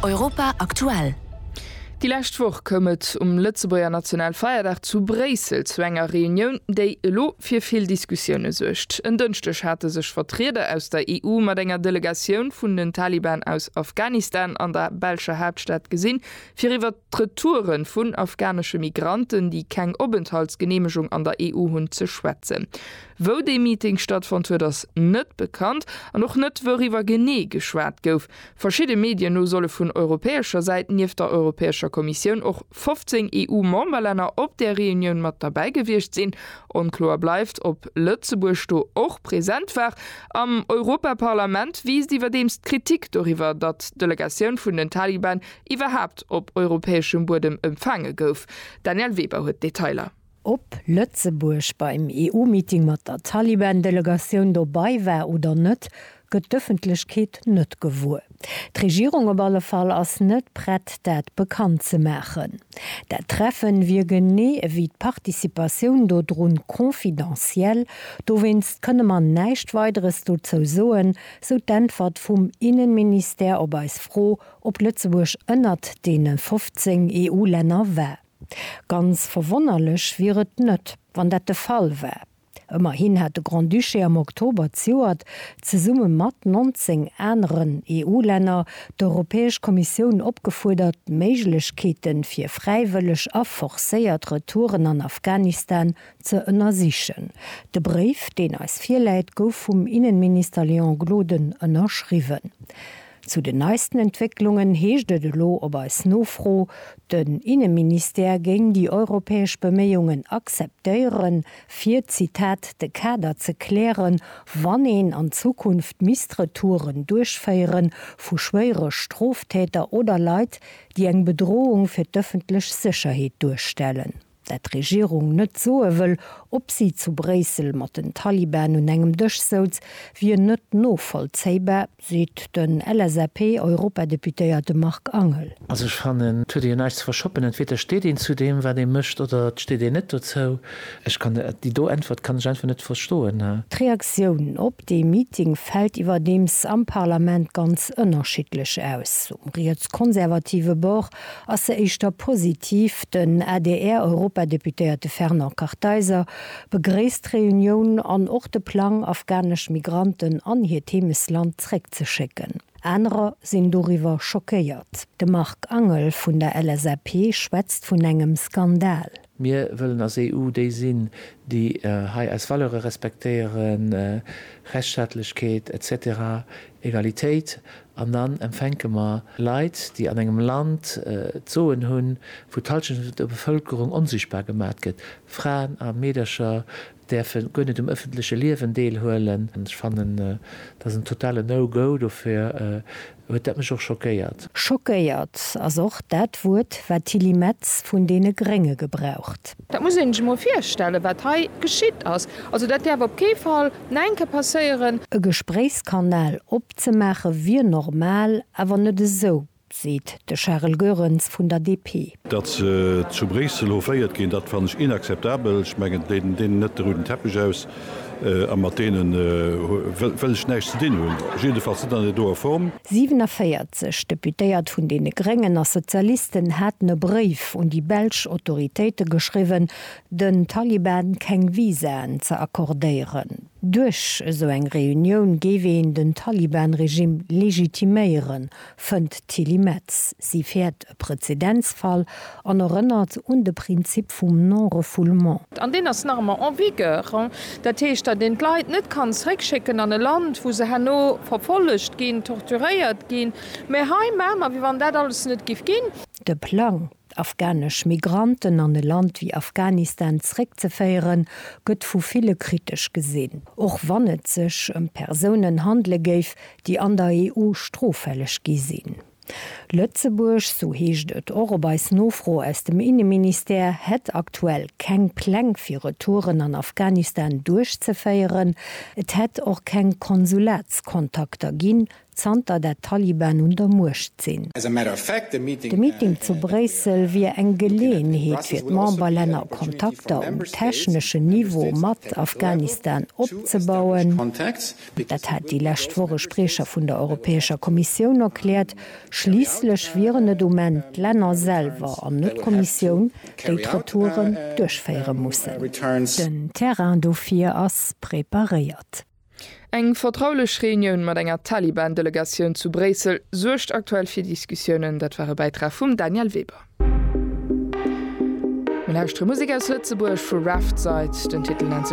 Europa aktuell. Déi lescht Woch koum et um Lëtzebuerger Nationalfeierdag zu Bréissel zu enger Reunioun, déi elo fir vill Diskussioune suergt. En Dënschdeg hate sech Vertrieder aus der EU mat enger Delegatioun vun den Taliban aus Afghanistan an der belscher Haaptstad gesinn, fir iwwer d'Retoure vun afghanesche Migranten, déi keng Openthaltsgeneemegung an der EU hunn, ze schwätzen. Wou dee Meeting stattfonnt huet, ass net bekannt an och net, wouriwwer genee geschwat gouf. Verschidde Medien no solle vun europäescher Säit nieft der Europäescher Kommissioun och 15 EU-Memberlänner op där Reunioun mat derbäi gewiescht sinn. Onkloer bleift, ob Lëtzebuerg do och present war. Am Europaparlament wiisst iwwerdeems d'Kritik doriwwer, datt d'Delegatioun vun den Taliban iwwerhaapt op europäeschem Buedem empfaange gouf. D'Danièle Weber huet d'Detailer. Ob Lëtzebuerg beim EU-Meeting mat der Taliban-Delegatioun dobei war oder net, gëtt d'Ëffentlechkeet net gewuer. D'Regierung op alle Fall ass net prett, dat bekannt ze maachen. Dat Treffen wier genee ewéi d'Participatioun dodrun confidentiel, dowéinst kënne mer näischt Weideres dozou soen, sou d'Äntwert vum Innenministère op eis Fro, ob Lëtzebuerg ënnert deene 15 EU-Länner war. Ganz verwonnerlech wier et net, wann dat de Fall war. Ëmmerhin hat de Grand-Duché am Oktober zioert, zesumme mat 19 aneren EU-Länner, d'Europäesch Kommissioun opgefuerdert, Méiglechkeete fir fräiwëlleg a forcéiert Retouren an Afghanistan ze ënnersichen. De Bréif, deen eis virläit, gouf vum Innenminister Léon Gloden ënnerschriwwen. Zu den neisten Entwécklungen heescht et elo op eis Nofro, den Inneministère géing déi europäesch Beméiungen akzeptéieren, fir, Zitat, de Kader ze klären, wann een an Zukunft misst Retouren duerchféiere vu schwéiere Stroftäter oder Leit, déi eng Bedrohung fir d'ëffentlech Sécherheet duerstellen. dat d'Regierung net soe wëll, ob si zu Bréissel mat den Taliban un engem Dësch souz, wier net novollzéibar, seet den LSAP-Europadeputéierte Marc Angel. Also ech fannen, et huet ee jo näischt ze verschoppen. Entweder steet een zu deem, wat ee mécht, oder et steet een net dozou. Ech kann déi do Äntwert kann ech einfach net verstoen. D'Reaktioun op dee Meeting fält iwwerdeems am Parlament ganz ënnerschiddlech aus. Um rietskonservative Bord ass se éischter positiv. Den ADR-Europadeputéierte Fernand Kartheiser begréisst d'Reunioun an och de Plang, afghanesch Migranten an hiert Heemesland zréckzeschécken. Anerer sinn doriwwer schockéiert. De Marc Angel vun der LSAP schwätzt vun engem Skandal. Mir wëllen als EU déi sinn, déi hei eis Valeure respektéieren, Rechtsstaatlechkeet, etc. Egalitéit. An dann empfänke mer Leit, déi an engem Land d'Soen hunn, wou d'Halschent vun der Bevëlkerung onsichtbar gemat gëtt, Fraen a Meedercher, däerfe guer net um ëffentleche Liewen deelhuelen. Ech fannen, dat ass en totale No-Go, dofir huet dat mech och schockéiert. Schockéiert ass och dat Wuert, wat d'Tilly Metz vun deene Grénge gebraucht. Dat muss een sech emol virstellen, wat hei geschitt ass. Also, dat däerf op kee Fall no enke passéieren. E Gespréichskanal opzemaache wier normal, awer net esou. seet de Charel Goerens vun der DP. Datt se zu Bréissel hoféiert ginn, dat fannen ech inakzeptabel. Ech mengen, deenen deenen net de ruden Teppech aus, a mat deene wëll ech näischt ze dinn hunn, jiddefalls net an der doer Form. 47 Deputéiert vun deene Gréngen a Sozialisten haten e Bréif un déi belsch Autoritéite geschriwwen, den Taliban keng Visaen ze accordéieren. Duerch esou eng Reunioun géif een den Taliban-Regimm legitiméieren, fënnt d'Tilly Metz. Si fäert e Prezedenzfall an erënnert un de Prinzip vum Non-refoulement. An deen ass nach ëmmer en vigueur. Dat heescht, datt een d'Leit net kann zeréckschécken an e Land, wou se herno verfollegt ginn, torturéiert ginn. Mä hei maache mer, wéi wann dat alles net géif ginn. De Plang, d'afghanesch Migranten an e Land wéi Afghanistan zréckzeféieren, gëtt vu ville kritesch gesinn, och wann et sech ëm Persounen handele géif, déi an der EU stroffälleg gi sinn. Lëtzebuerg, sou heescht et och op eis Nofro aus dem Inneministère, hätt aktuell keng Pläng fir Retouren an Afghanistan duerchzeféieren. Et hätt och keng Konsulatskontakter ginn, zanter dat d'Taliban un der Muecht sinn. De Meeting zu Bréissel wier eng Geleeënheet fir d'Memberlänner Kontakter um techneschen Niveau mat Afghanistan opzebauen. Dat hat déi lescht Woch e Spriecher vun der Europäescher Kommissioun erkläert. Schliisslech wieren et um Enn d'Länner selwer an net d'Kommissioun, déi d'Retouren duerchféiere mussen. Den Terrain dofir ass preparéiert. Eng vertraulech Reunioun mat enger Taliban-Delegatioun zu Bréissel suergt aktuell fir Diskussiounen. Dat war e Bäitrag vum Daniel Weber. Mir lauschtere Musek aus Lëtzebuerg vu Raftside. Den Titel nennt sech.